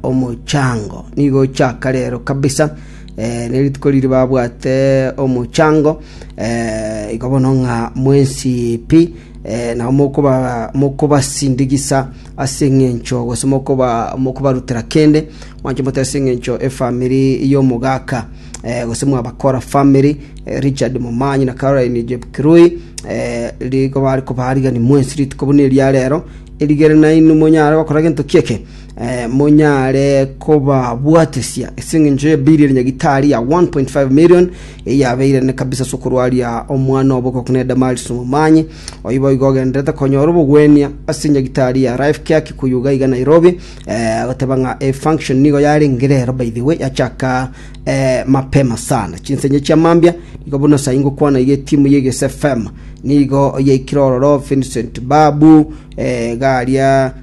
omochango. Nigo ochaka rero kabisa eh, nerituko riri babwate omochango eh, igo bono ng'a mwensi pi eh, nabo mokoba mokobasindigisa ase eng'encho gose mokoba mokobarutera kende mwanche mote ase eng'encho efamiri y'omogaka eh, gose mwabakora famiri eh, Richard Momanyi na Caroline Jepkirui eh, rigo bari kobarigani mwensi rituko buna eria rero erigere nainwe monyare gokora gento kieke monyare kobabwatisia ase engencho ye bili ya nyagitari ya 1.5 million, eyio yabeire ene kabisa ase okorwaria omwana obo okogokuna Edamaris omomanyi. Oyio boigo ogendererete konyora obogwenia ase nyagitari ya Life Care Kikuyu iga iga Nairobi, eh, agoteba ng'a e function nigo yarenge rero by the way yachaka eh, mapema sana. Chinsa inye chia mambia, nigo buna sai ngokwana iga etimu ya Eges FM nigo yaikire ororo Vincent Babu, eh, iga aria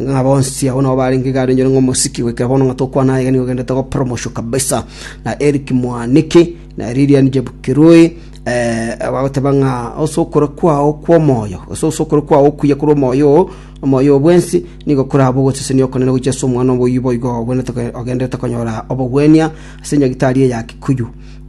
ng'a bonsi abwo nao barenge igare enyore ng'omosiki, goika bono ng'a tokwana aye nigo ogendete gokora omosio kabisa, na Eric Mwaniki, na Lilian Chepkirui, eh, bagoteba ng'a ase okora kwao kw'omoyo, ase ase okora kwao okuya korwa omoyo oo, omoyo oo bwensi, nigo koraba ogosesenia okonene gochia ase omwana omoyio boigo obwenerete ko- ogenderete konyora obogwenia ase enyagitari eye ya Kikuyu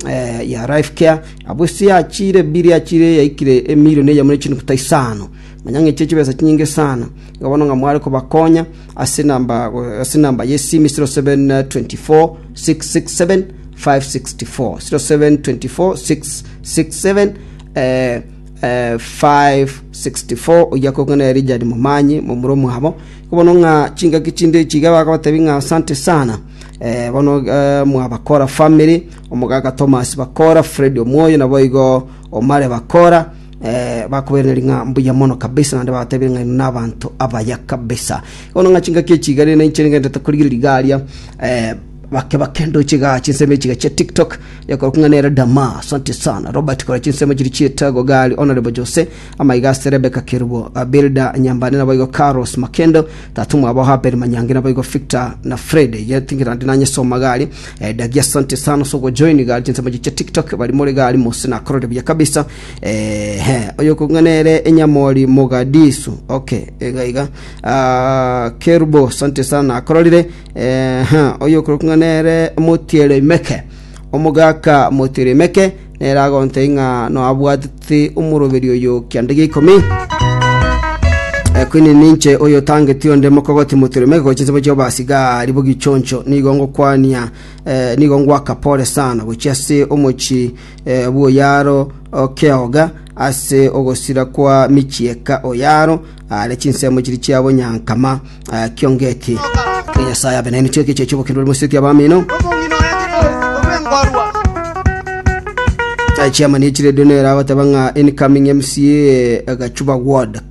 eh, ya Life Care, abwo ase yachiire, bill yachiire yaikire emilion eyemo ne chinukuta isano. Nonya ng'a echie chibesa chinyinge sana, iga bono ng'a mware kobakonya ase enamba ase enamba y'esimi 0724 667 564 0724 667 eh, eh, 564 oyia kogana ya Richard Momanyi momura omwabo igo bono ng'a chingaki chinde echi iga bakabatebi ng'a asante sana eh, bono eh, mwabakora family omogaka Thomas bakora Fred Omwoyo nabo igo omare bakora Bakobereneria ng'a mbuya mono kabisa, naende bagatebia ng'a inwe nabanto abaya kabisa. Bono ng'a chingaki echi igare ninche nigenderete korigereria iga aria, eh, bake bake ndoche iga chinsemo echi iga chia tiktok, ekorokwa ng'a nere Dama, asante sana. Robert kora chinsemo chiri chi'etago iga aria, Honourable Jose, amaiga ase Rebecca Kerubo, ah, Builder Nyambane nabo igo Carlos Makendo, tata omwabo Abel Manyangi nabo igo Victor na Fred, yet ngera ndi nanyesoma iga aria. Eh, Dagi asante sana ase ogojoin iga aria chinsemo chiria chia tiktok, baria more iga aria mose nakorire buya kabisa. Eeh, oyokong'a nere enyamori Mogadisu. Okay, iga iga. Ah, Kerubo, asante sana. Akororire, eeh, oyokong'a nere Motierimeke. Omogaka Motierimeke nere agontei ng'a noabwatete omoroberi oyo kianda gia ikomi. Eh, kwini ninche oyotangeti onde mokogoti Motierimeke gochia nsemo chia obasigari bogichoncho. Nigo ngokwania, eh, nigo ngwaka pore sana gochia ase omochie bw'oyaro keoga ase ogosira kwa michieka oyaro are chinsemo chiria chia bonyankama kiongeti. Nyasae abe nainwe chiake chiacha obokendu bw'omoiseke abamino. Chairman echire dune eragoteba ng'a incoming MCA Gachuba Ward